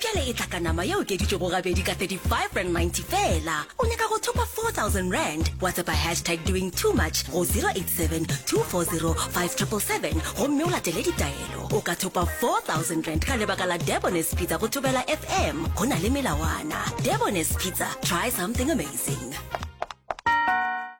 Bjale e tla ka nama ya okeditšwego gabedi ka 35 rand 90 fela. O nyaka go thopa 4000 rand? Whatsapp hashtag doing too much go 087 240 5777 gomme o latele ditaelo. O ka thopa 4000 rand ka lebaka la Debonair's Pizza go Thobela FM. Go na le melawana. Debonair's Pizza, try something amazing.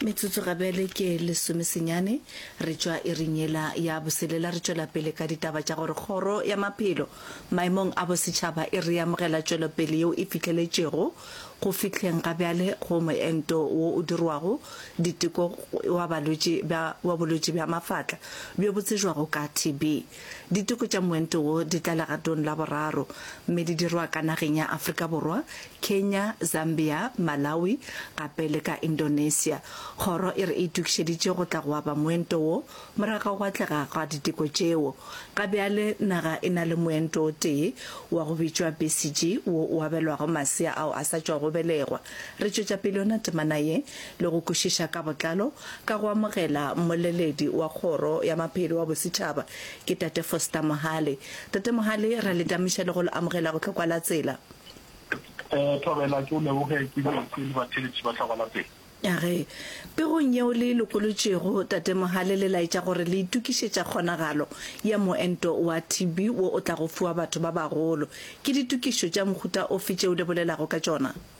Metsotso gabjale ke lesome senyane re tšwa iring yela ya boselela. Re tšwela pele ka ditaba tša gore Kgoro ya Maphelo Maemong a Bosetšhaba e reamogela tšwelopele yeo e fihleletšego go fihleng ga bjale go moento wo o dirwago diteko wa balwetši ba wa bolwetši bja mafatla bjo bo tsejwago ka TB. Diteko tša moento wo di tla legatong la boraro mme di dirwa ka nageng ya Afrika Borwa, Kenya, Zambia, Malawi gape le ka Indonesia. Kgoro e re e itokišeditše go tla go aba moento wo morago ga atlega ga diteko tšeo. Ga bjale naga e na le moento o tee wa go bitšwa BCG wo o abelwago masea ao a sa tšwago belegwa. Re tšwetša pele yona temana ye le go kwešiša ka botlalo ka go amogela mmoleledi wa Kgoro ya Maphelo wa Bosetšhaba, ke Tate Foster Mohale. Tate Mohale, ra le damiša le go le amogela go Tlhokwa la Tsela. Eh, Thobela, ke o leboge, ke botse le batheletši ba Tlhokwa la Tsela. Age, pegong yeo le e lokolotšego, Tate Mohale, le laetša gore le itokišetša kgonagalo ya moento wa TB wo o tlago fiwa batho ba bagolo. Ke ditokišo tša mohuta ofe tšeo le bolelago ka tšona?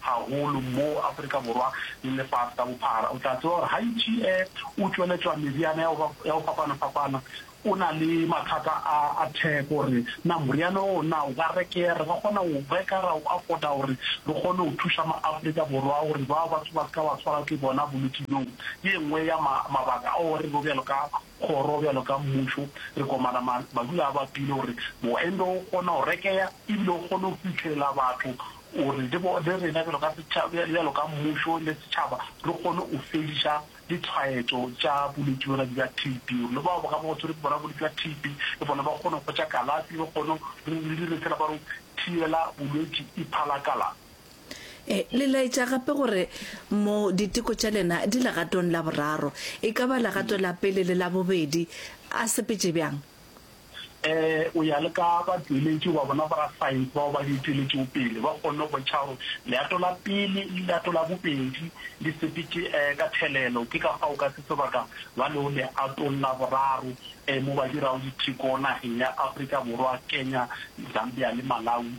haholo mo Afrika Borwa le lefase ka bophara. O tla tseba gore ha Itšie o tšweletšwa meriana ya go ya go fapana-fapana, o na le mathata a a theko gore na moriana oo na o ka rekeha, re ka kgona go o reka ra o afford-a gore re kgone go thuša ma-Afrika Borwa gore bao batho ba se ka ba tshwarwa ke bona bolwetši bjo. Ke e nngwe ya ma mabaka ao re bo bjalo ka kgoro, bjalo ka mmušo re komana ma madu a bapile gore moento o kgone go rekeha e bile o kgone go fitlhelela batho O re le rena bjalo ka setšhaba, bjalo ka mmušo le setšhaba re kgone go fediša ditshwaetšo tša bolwetši bjona bja TB, gore le bao ba ka ba ba tshwerwe ke bona bolwetši bja TB le bona ba kgone go hwetša kalafi, re kgone re dire sela ba re go thibela bolwetši iphalakala. Le laetša gape gore mo diteko tša lena di legatong la boraro, e ka ba legato la pele le la bobedi a sepetše bjang? o ya le ka batšweletši ba bona ba rasaense bao ba di tšweletšego pele, ba kgonne go bontšha gore leato la pele le leato la bobedi le sepetše ka thelelo. Ke ka fao ka se sebaka ba lego leatong la boraro mo ba dirago ditheko nageng ya Afrika Borwa, Kenya, Zambia le Malawi.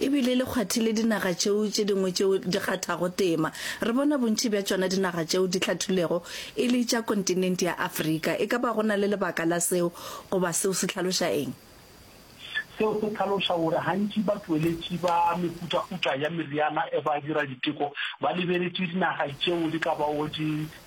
e bile le kgwathile dinaga tšeo tše dingwe tšeo di kgathago tema. Re bona bontši bja tšona dinaga tšeo di hlathulwego e le tša kontinente ya Afrika. E ka ba go na le lebaka la seo, goba seo se hlaloša eng? Seo se hlaloša gore gantši batšweletši ba mehutahuta ya meriana e ba dira diteko ba lebeletše dinaga tšeo di ka bago di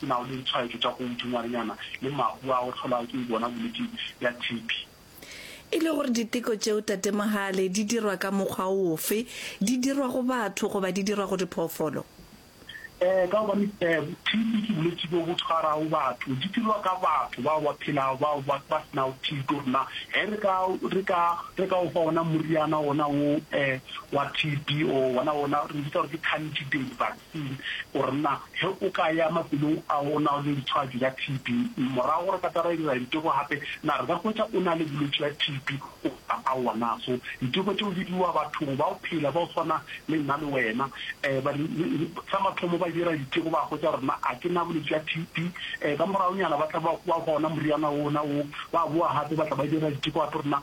Ke na le ditshwaetšo tša go dingwarinyana le mahu a go hlolwa ke bona bolwetši bja TB. E le gore diteko tšeo Tate Mohale di dirwa ka mokgwa ofe? Di dirwa go batho goba di dirwa go diphoofolo? Ee, ka gobane TB ke bolwetši bjo bo tshwarago batho. Di dirwa ka batho bao ba phelago, bao ba ba se nago TB. Rena ge re ka re ka re ka o fa ona moriana ona wo wa TB o ona ona re bitsa gore ke candidate vac. Gore na ge o ka ya mafelong ao o nago le ditshwaetšo tša TB, morago gore katara e dira diteko gape, na re ka hwetša o na le bolwetši bja TB goba aowa? Na so diteko tšeo di dirwa bathong bao phela bao swana le nna le wena? Ee. Ba re, Sa mathomo ba dira diteko ba hwetša gore na a ke na bolwetši bja TB. Ee, ka moragonyana ba tla ba hwa gona moriana wona woo, ba boa gape ba tla ba dira diteko gape gore na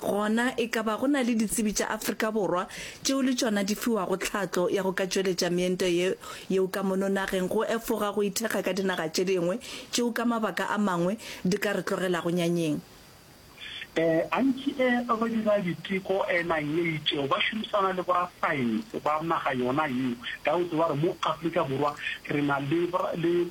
Gona e ka ba go na le ditsebi tša Afrika Borwa tšeo le tšona di fiwago tlhatlo ya go ka tšweletša meento ye yeo ka mono nageng go efoga go ithekga ka dinaga tše dingwe tšeo ka mabaka a mangwe di ka re tlogelago nyanyeng? E, gantši e, go dira diteko e, nang ye itšego ba šomisana le borasaense ba naga yona yeo. Ka go tseba gore mo Afrika Borwa re na le, le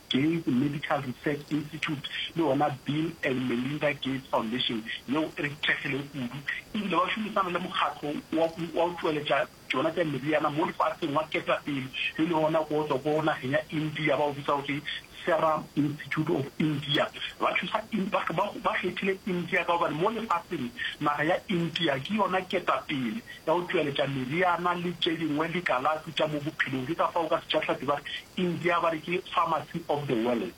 Gates Medical Research Institute le yona Bill and Melinda Gates Foundation yeo e kgethegilego kudu e bile ba šomisana le mokgatlo wa go wa go tšweletša tšona tša meriana mo lefaseng wa ketapele e le wona go tswa ko nageng ya India ba o bitsa gore Serum Institute of India. Ba thusa in ba ba ba kgethile India ka gobane mo lefaseng naga ya India ke yona ketapele ya go tšweletša meriana le tše dingwe le kalafi tša mo bophelong ke ka fao ka setšahlapi ba re India ba re ke pharmacy of the world.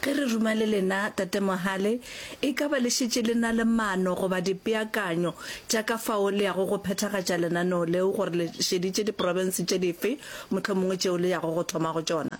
Ge re ruma le lena, Tate Mohale, e ka ba le šetše le na le maano goba dipeakanyo tša ka fao le yago go phethagatša lenaneo leo gore le šeditše diprofense tše dife mohlomongwe tšeo le yago go thoma go tšona?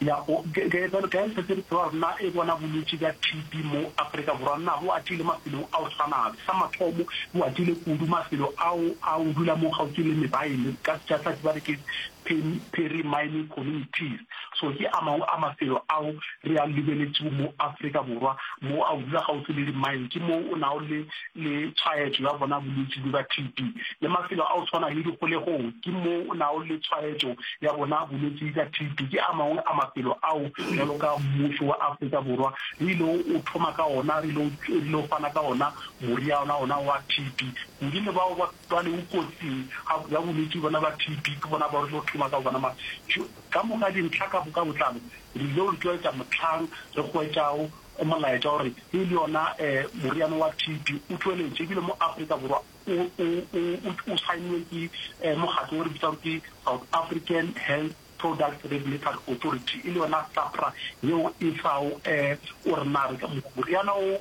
Ya, o, ge, ge, bjalo ka ge re šetše re tseba gore na e bona bolwetši bja TB mo Afrika Borwa, na bo atile mafelong a go swana afe? Sa mathomo, bo atile kudu mafelo ao a go dula mo kgauswi le mebaele, ka Setšathlathi ba re ke Phiri Mining Communities. So ke a mangwe a mafelo ao re a lebeletšego mo Afrika Borwa mo a o dula gaufi le di-mine, ke moo o nago le le tshwaetšo ya bona bolwetši bjo ba TB. Le mafelo a o tshwana le dikgolegong ke moo o nago le tshwaetšo ya bona bolwetši ka TB. Ke a mangwe a mafelo ao bjalo ka mmušo wa Afrika Borwa re ile o thoma ka ona, re ile o fana ka ona moriana ona wa TB kudu le bao ba Bjale o kotsing ga, ya bolwetši bona ba TB, ke bona bao re tlo thoma ka bona. Mara tjo, ka moka dintlha ka, ka botlalo re ile go di tlwaetša mohlang re hwetšago molaetša wa gore e le yona eh, moriana wa TB o tšweletše ebile mo Afrika Borwa o, o, o, o, o saennwe ke eh, mokgatlo o re bitsang ke South African Health Products Regulatory Authority, e le yona SAHPRA yeo e fago eh, gore na re ka, moriana o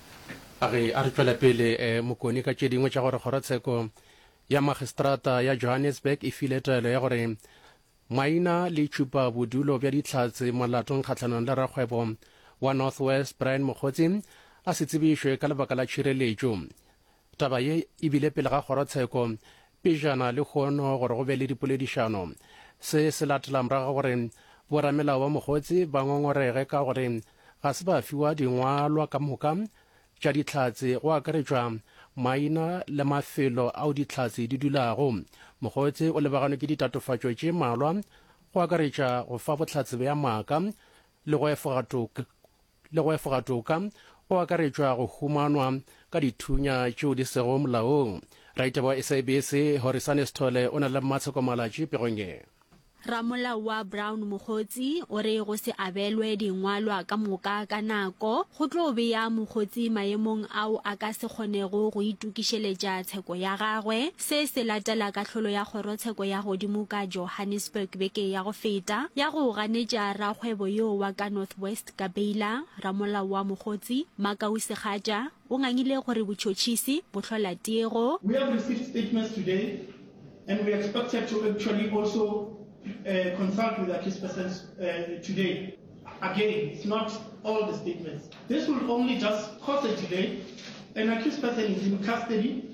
A re a re tšwele pele, Mokoni ka tše dingwe tša gore Kgorotsheko ya Magistrata ya Johannesburg e file taelo ya gore maina le tšhupa bodulo bja dihlatse molatong kgahlanong le rakgwebo wa North West Brian Mokgotsi a se tsebišwe ka lebaka la tšhireletšo. Taba ye e bile pele ga kgorotsheko pejana lehono gore go be le dipoledišano. Se se latela morago ga gore boramelao ba Mokgotsi ba ngongorege ka gore ga se ba fiwa dingwalwa ka moka tša dihlatse go akaretšwa maina le mafelo ao dihlatse di dulago. Mokgotsi o lebaganwe ke ditatofatšo tše malwa go akaretša go fa bohlatse bja maaka le go efoga toka le go efoga toka go akaretšwa go humanwa ka dithunya tšeo di sego molaong. Raitebo wa SABC Horisane Sithole o na le mmatshekomalatši pegong ye. Ramolao wa Brown Mokgotsi o re go se abelwe dingwalwa ka moka ka nako go tlo bea Mokgotsi maemong ao a ka se kgonego go itokišeletša tsheko ya gagwe. Se se latela kahlolo ya Kgorotsheko ya godimo ka Johannesburg beke ya go feta, ya go ganetša rakgwebo yoo wa ka North West ka beila, ramolao wa Mogotsi, Makau Segatša, o ngangile gore botšhotšhisi, bo hlola tiego. We have received statements today and we expected to actually also consult with the Kispersons today. Again, it's not all the statements. This will only just cause a delay and the Kisperson is in custody.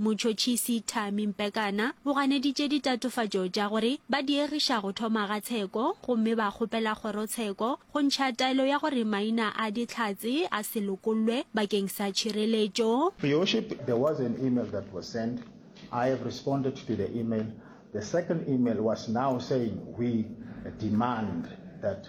Motšhotšhisi Thami Mpekana o ganeditše ditatofatšo tša gore ba diegiša go thoma ga tsheko gomme ba kgopela kgorotsheko go ntšha taelo ya gore maina a Dihlatse a se lokollwe bakeng sa tšhireletšo. Your worship, there was an email that was sent, I have responded to the email, the second email was now saying we demand that.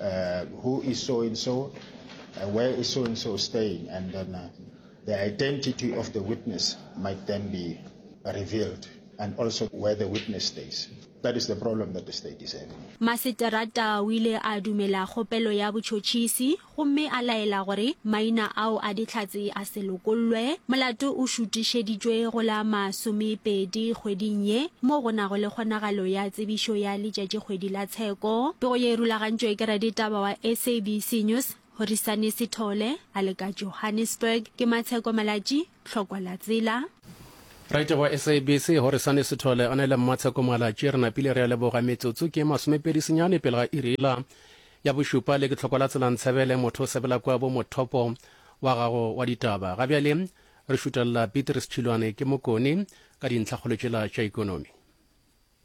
uh, who is so and so, uh, where is so and so staying, and then uh, the identity of the witness might then be revealed, and also where the witness stays. That is the problem that the state is having. Maseterata o ile a dumela kgopelo ya botšhotšhisi gomme a laela gore maina ao a dihlatse a se lokollwe. Molato o šutišeditšwe go la masomepedi kgweding ye mo go nago le kgonagalo ya tsebišo ya letšatšikgwedi la tsheko. Pego ye e rulagantšwe ke raditaba wa SABC News, Horisani Sithole, a le ka Johannesburg. Ke Matsheko Malatji, Tlhokwa la Tsela. Raditaba wa SABC, Horisani Sithole, a na le Mmatsheko Malatji. Re napile re a leboga. Metsotso ke masomepedi senyane pele ga iri la ya bošupa le ke Tlhokwa la Tsela Ntshebele, motho o sebela kwa bo Mothopo, wa gago wa ditaba. Ga bjale re šutelela Beatrice Tšhilwane ke Mokoni ka dintlhakgolo tšela tša ekonomi.